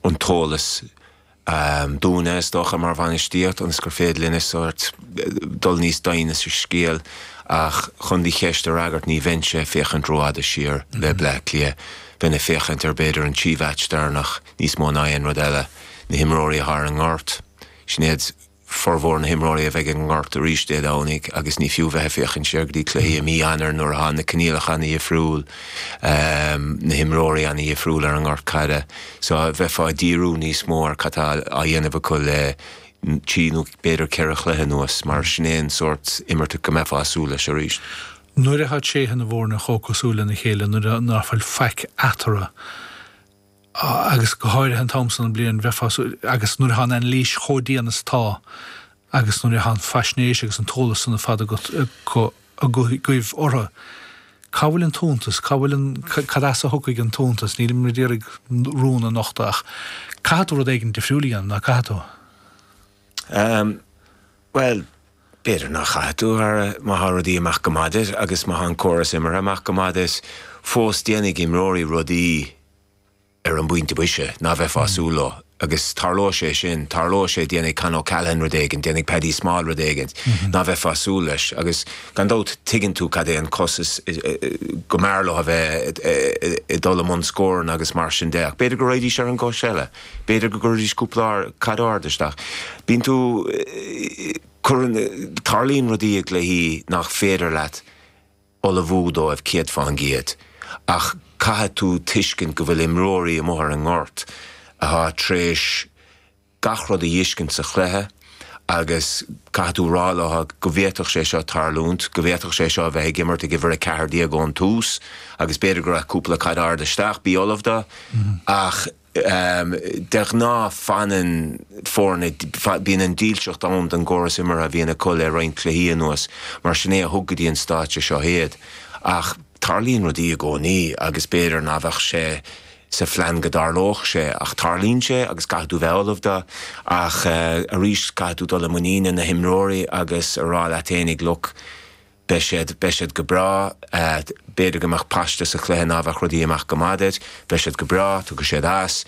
an t-eolas dúinne, is dócha, mar bhainistíocht ionas gur féidir linn sórt dul níos doimhne sa scéal ach chun do cheist a fhreagairt ní bheinnse ag féachaint rófhada siar le Bleá Cliath, bheinn ag féachaint ar b'fhéidir an trí mheaits deireanach níos mó ná aon rud eile, na himreoirí atá i ngort, sin iad. formhór na himreoirí a bheidh i ngort arís Dé Domhnaigh agus ní fiú bheith ag féachaint siar go dtí cluichí i mí Eanáir nuair atá na coinníollacha ana-dhifriúil, na himreoirí ana-dhifriúil ar an ngort caide. So bheifeá ag díriú níos mó ar cad tá á dhéanamh acu le trí nó b'fhéidir ceithre chluiche anuas mar sin é an sórt imeartha go mbeifeá ag súil leis arís. Nuair atá tréithe na bhfoirne chomh cosúil lena chéile, nuair nach bhfuil faic eatarthu, agus go háirithe an t-am sa bhliain, bheifeá sa, agus nuair atá an anailís chomh dian is atá agus nuair atá an faisnéis agus an t-eolas san ar fad agat, agaibh, orthu, cá bhfuil an t-iontas, cá bhfuil an, cad as a thiocfaidh an t-iontas, nílim ag iarraidh ort rún a nochtadh ach caithfidh tú rud éigin difriúil a dhéanamh, ná caithfidh tú? Bhuel, b'fhéidir ná caithfidh tú, a Dhara, má thá rudaí ag imeacht go maith duit agus má thá an córas imeartha ag imeacht go maith duit, fós déanfaidh imreoirí rudaí ar an bpointe boise ná beifeá ag súil leo agus tarlóidh sé sin, tarlóidh sé, déanfaidh Con O'Callaghan rud éigin, déanfaidh Paddy Small rud éigin ná beifeá ag súil leis agus gan dabht tuigeann tú cad é an cos is go mb'fhearr leo a bheith ag dul i mbun scóranna agus mar sin de ach b'fhéidir go raghaidís ar an gcois eile. B'fhéidir go gcuirfidís cúpla caid ard isteach. Bíonn tú, cuireann, tarlaíonn rudaí ag cluichí nach féidir leat ullmhú dóibh céad faoin gcéad ach caithfidh tú tuiscint go bhfuil imreoirí amuigh ar an ngort atá tar éis gach rud a fheiscint sa chluiche agus caithfidh tú rá leo go bhféadfadh sé seo tarlúint, go bhféadfadh sé seo a bheith ag imirt ag uimhir 14 ón tús agus b'fhéidir go raghaidh cúpla caid ard isteach, bí ullamh dó ach. De ghnáth, fanann foirne, bíonn an dílseacht ann don gcóras imeartha a bhíonn acu le roinnt cluichí anuas, mar sin é a thug go dtí an stáitse seo iad, ach tarlaíonn rudaí i gcónaí agus b'fhéidir ná beadh sé sa phlean go dtarlódh sé, ach tarlaíonn sé agus caithfidh tú bheith ullamh dó, ach arís caithfidh tú dul i muinín na n-imreoirí agus a rá leat féinig, look. Beidh siad, beidh siad go breá. B'fhéidir go mbeadh paiste sa chluiche ná beadh rudaí ag imeacht go maith duit. Beidh siad go breá, tiocfaidh siad as.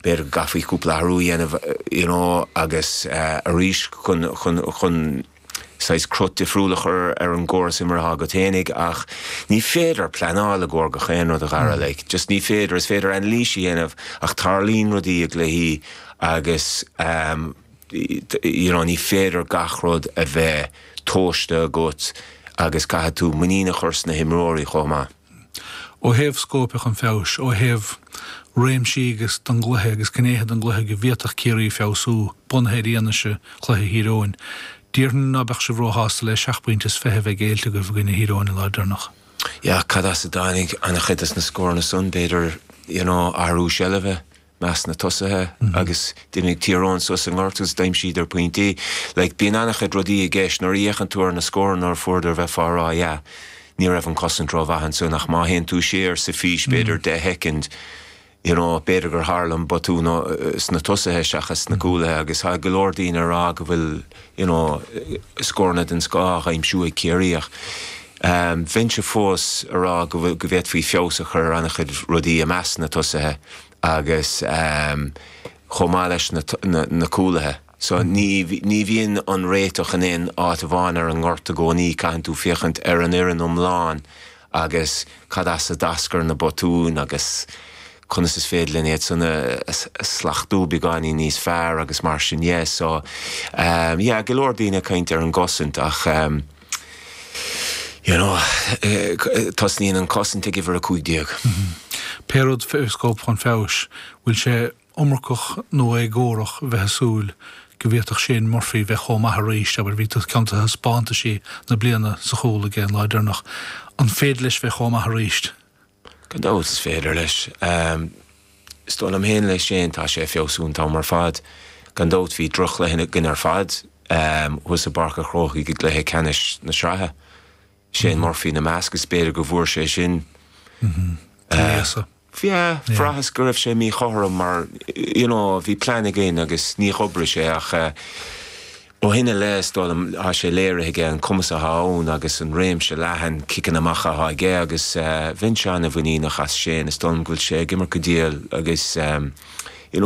B'fhéidir go gcaithfí cúpla athrú a dhéanamh you know agus arís chun, chun, chun saghas cruth difriúil a chur ar an gcóras imeartha agat féinig ach ní féidir pleanáil i gcomhair gach aon rud a Dhara, like just ní féidir. Is féidir anailís a dhéanamh ach tarlaíonn rudaí i gcluichí agus. you know ní féidir gach rud a bheith tomhaiste agat agus caithfidh tú muinín a chur sna himreoirí chomh maith. Ó thaobh scóipe chun feabhais, ó thaobh réimsí agus don gcluiche agus gnéithe don gcluiche go bhféadfadh Ciarraí feabhsú, bunaithe ar fhianaise chluiche Thír Eoghain, déarfainn ná beadh sibh róshásta le seacht bpointe is fiche a bheith géillte agaibh i gcoinne Thír Eoghain an lá deireanach. Yeah cad as a dtáinig an-chuid de na scóranna san, b'fhéidir you know athrú seilbhe? measc na tosaithe agus d'imigh Tír Eoghain suas an gort agus d'aimsíodar pointí. Like bíonn an-chuid rudaí i gceist. Nuair a fhéachann tú ar na scóranna nuair a fuaireadar iad bheifeá a rá yeah ní raibh an cosaint rómhaith ansin ach má théann tú siar sa fís b'fhéidir deich shoicind you know b'fhéidir gur tharla an botún sna tosaithe seachas sna cúlaithe agus tá go leor daoine ag rá go bhfuil you know scóranna den scoth á aimsiú ag Ciarraí ach Bheinnse fós a rá go bhféadfaí feabhas a chur ar an-chuid rudaí i measc na tosaithe agus chomh maith leis na cúlaithe. So ní bhíonn an réiteach in aon áit amháin ar an ngort i gcónaí, caitheann tú féachaint ar an fhoireann iomlán agus cad as a d'eascair na botúin agus conas is féidir linn iad san a shlachtú beagáinín níos fearr agus mar sin de. So yeah go leor daoine ag caint ar an gcosaint ach. you know, tosnaíonn an cosaint ag uimhir 15. Pé rud fé scóip chun feabhais, bhfuil sé iomarcach nó éagórach bheith ag súil go bhféadfadh Shane Murphy bheith chomh maith arís, abair, bhí ceann de thaispeántaisí na bliana sa chúl aige an lá deireanach, an féidir leis bheith chomh maith arís? Gan dabht, is féidir leis. Is dóigh liom féin le Shane, tá sé ag feabhsú an t-am ar fad. Gan dabht, bhí droch-chluiche againn ar fad thuas i bPáirc an Chrócaigh i gcluiche ceannais na sraithe, Shane Murphy ina measc, is b'fhéidir go bhfuair seisean, yeah, bhraitheas go raibh sé míchothrom mar, you know, bhí plean againn agus ní dh'oibrigh sé ach, Ó shin i leith, is dóigh liom, tá sé léirithe aige an cumas atá ann agus an réimse leathan ciceanna amach atá aige agus bheinnse an-mhuiníneach as Shane. Is dóigh liom go bhfuil sé ag imirt go diail agus.